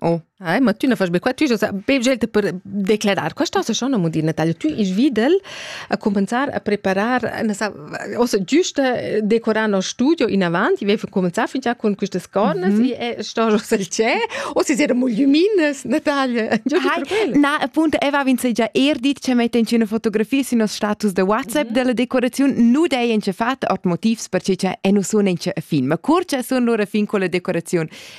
Oh, Ai, ma tu ne fas be qua, tu ja sa be gente per declarar. Questa se schon mo dir Natalia, tu ich videl a cominciar a preparar na sa ossa giusta decorar no studio in avanti, vi cominciar fin già con quistas cornas mm -hmm. e sto jo sel c'è, o si era mo lumines, Natalia. Ai, na, appunto, Eva vince già er dit che mette in una fotografia sino status de WhatsApp mm -hmm. della decorazione, nu dei in ce fate ot motivs perché c'è e nu sono in ce film. Ma curce sono loro fin con la decorazione.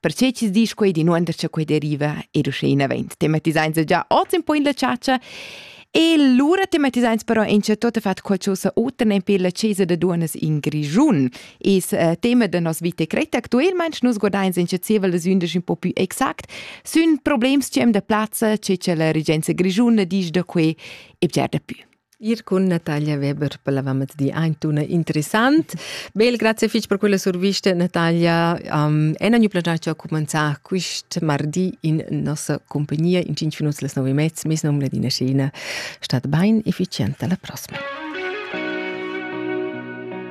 Perche chi's disch quei d'inuonder cha quei deriva ed uschè inavant. Tematisains già oz in po in la chatscha E lura tematisains però in c'è tot fat qualcosa oter ne per la chesa da duonas in Grischun. Es äh, tema da nos vita cretta actuelmaing nus guardains in cezevel las undisch un po più exact sün problems ci am da plazza che cha la regenza grischuna disch da que e bger da più. Ir cun Natalia Weber per l'avamezdi ein una interessant. Bel, grazie fich per quella survista, Natalia. Um, en ogni plagiar ci ho comenzato quest mardi in nostra compagnia in 5 minuti las 9 e mezza. Mes nome Ladina Scena. Stat ben efficiente alla prossima.